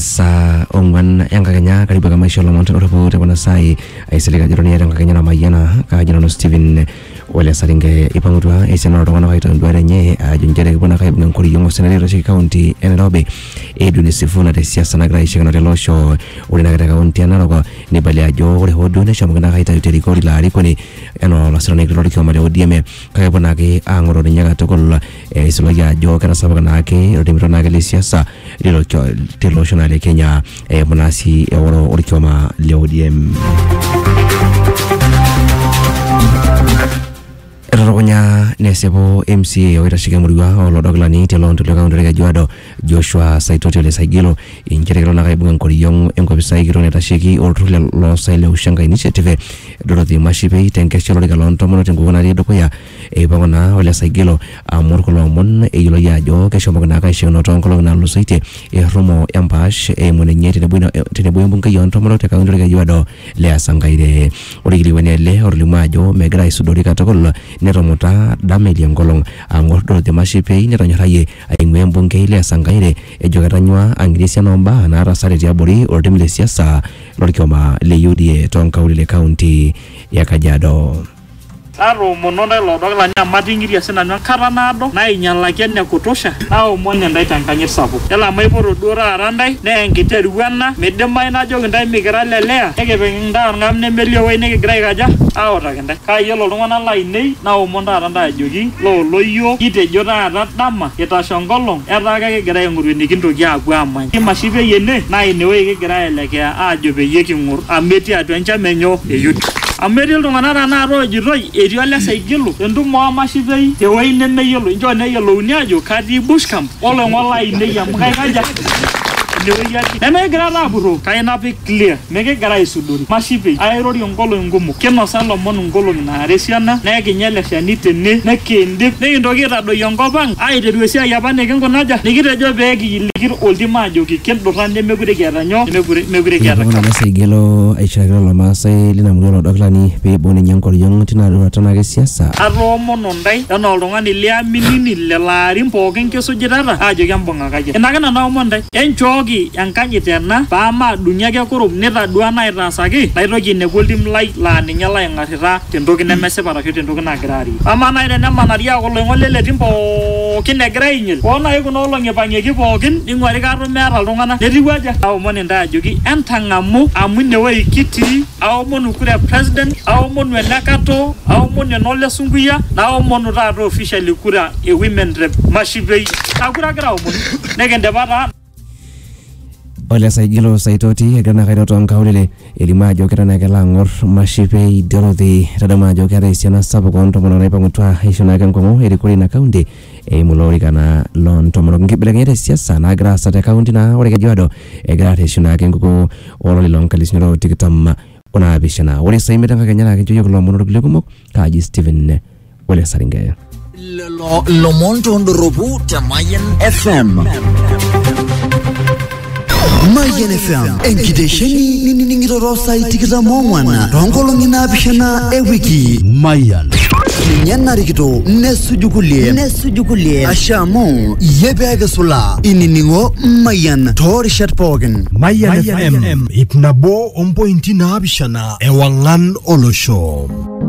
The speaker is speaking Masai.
saa ong'wan enkakenya karibu ake maisho lomon tedoropu tekuna saai aisilig ajo toniata enkakenya namayiana kaajo nanu Steven Ole Saringe ipang'utua esiana oltung'anak aitoki enduata enye ajo nchere kepuo nake aibung enkoriong osenetoi oitasheki kaunti e Nairobi Edwin Sifuna te siasa nagira aishakino tele osho ore nake te kaunti e Narok neibalia ajo ore hoo duo neshomoki nake aitayu te rikore ilo arikoni enaa olasirani kiti lorkioma le ODM kake epuo naake ang'oroo ninye katukul eisulaki ajo ketasapuka naake oltimitua naake le siasa lilo cho- tilo osho naa le Kenya eimu naa sii eoro orkioma le ODM. Etatukunya nesipu MCA oitasheki emurua olodokilani te Lonto le kaunti e Kajiado Joshua Saitoti Ole Saigilo inchere kelo naa aibung enkoriong enkopisai kitok naitasheki olturrur le loosaen le Ushenga Initiative Dorothy Mashipei tenkesha olorika loo ntomonok tenkukuo natii dukuya Eipang'u naa Ole Saigilo amur kulo omon eyioloi ajo keshomoki naake aishoono toonkolong'i naatulusoitie errumo empaash eimu ninye tenebo ina- tenebo we mbungei oo ntomonok te kaunti olkejuado le Asankaire. Ore olkilikuai naa ele otolimuo ajo megira aisudori katukul netumuta dama elia nkolong ang'or Dorothy Mashipei netonyorrayie aing'ua embungei le Asankaire ejo ketanyua ang'iri esiana oo mbaa naatasate tiabori oltim le siasa lolkioma le UDA toonkaulele e kaunti e Kajiado. Natoomono ntae loodok lanyi amu ating'iria si nanu enkata naado, naainyalaki ene kutosha, naomon intae te nkanyit sapuk. Yiolo amu aipoto duo taata intae, naa enkiteru ena, meidimayu najoki intae mikira le Lea, nikipik intae olng'am nemelio ewueji nikigira aikaja? Aautaki intae. Kake yiolo iltung'ana laainei, naomon taata intae ajoki, loo loyioo, kitejo taata dama, kitasho enkolong, etaa kekigira aaing'oru enikintoki aapuo aamany. Enkimashie peyie ene naa inewueji kigira aelekea aajo peyie king'or amu etii atua enchama enyo e YouTube. Amu etii iltung'ana tenakata oojitoi etii ole Saigilo entumo oo mashipei te wueji nemeyioloi. Inchoo neyiolouni aajo katii Bush Camp oloing'ok laainei amu kaikaja? Inewueji atii. Nemekigira taa apurroo kake ina pee clear. Mikigira aisudori mashipei aairorie ngolong'i kumok. Kinosa lomon ngolong'i naara esiana naa ekinya ele shani tene nikiindip nikintoki aitadoyio enkop ang aaiteru esiai apa nikinkuna aja? Nikitejo pee kiyiliki oltim aajoki kindurra nemekure kiata nyoo? Nemekure kiata Nepuku kap. Lamaasai igelu aishiraki lelo Maasai lina murua ilo dakilani pee eibung ninye enkoriong tina roruata naake e siasa. Atoomono ndai enaa oltung'ani liaminini lelo aarin pooki kisujitata aajoki embung'ata. Enkai. Ina ake nanu aomon intae, enchooki enkanyit ena paa maadung'i ake kurum nitaduaa naaitaasaki, naitoki ainepu oltim lai laa ninye laaing'arrita te ntoki nemesipa arashu te ntoki nagira aarie. Amaa naaji te nemanari aaku oloing'ok le le tim pooki egira aainyil, oo naaji kuna olong'i eipang'ieki pooki neing'uari kaatum meeta iltung'ana, netiu aja? Aomon intae ajoki entang'amu amu ine wueji kitii, aomonu kura e president, aomonu ene katoo, aomonu ene ole sunkuyia, naomonu taata officially kura e women rep, Masho. pei kakura kira omon nekindipa taa Ole Saigilo Saitoti egira naa kairo too nkaulele elimu ajo keton ake elo ang'or Mashipei Dorothy etadamu ajo keeta esiana sapuk oo ntomonok naipang'utua aisho naake enkomom erikore ina kaunti eimu ilo orika naa loo ntomonok. Nkibelekenyat e siasa naagira aasa te kaunti naa ore Kejuado egira arreshu naake enkukuo o lari loo nkalisuni are o tikitam o naapishana. Ore saa imiet enkakenya naa kincho iyiok ilomon orkulie kumok kaaji Stephen Ole Saringeya. lelo lomon tondoropu te Mayan FM. Mayian FM enkitesheni ninining'ito too saai tikitam oong'wan too nkolong'i naapishana e wiki. Mayian. Ninye narikito nesuju kulie nesuju kulie asha amu iyie pee kisulaa inining'o Mayian too rishat pookin. Mayian FM ip nabo ompointi naapishana ewang'an olosho.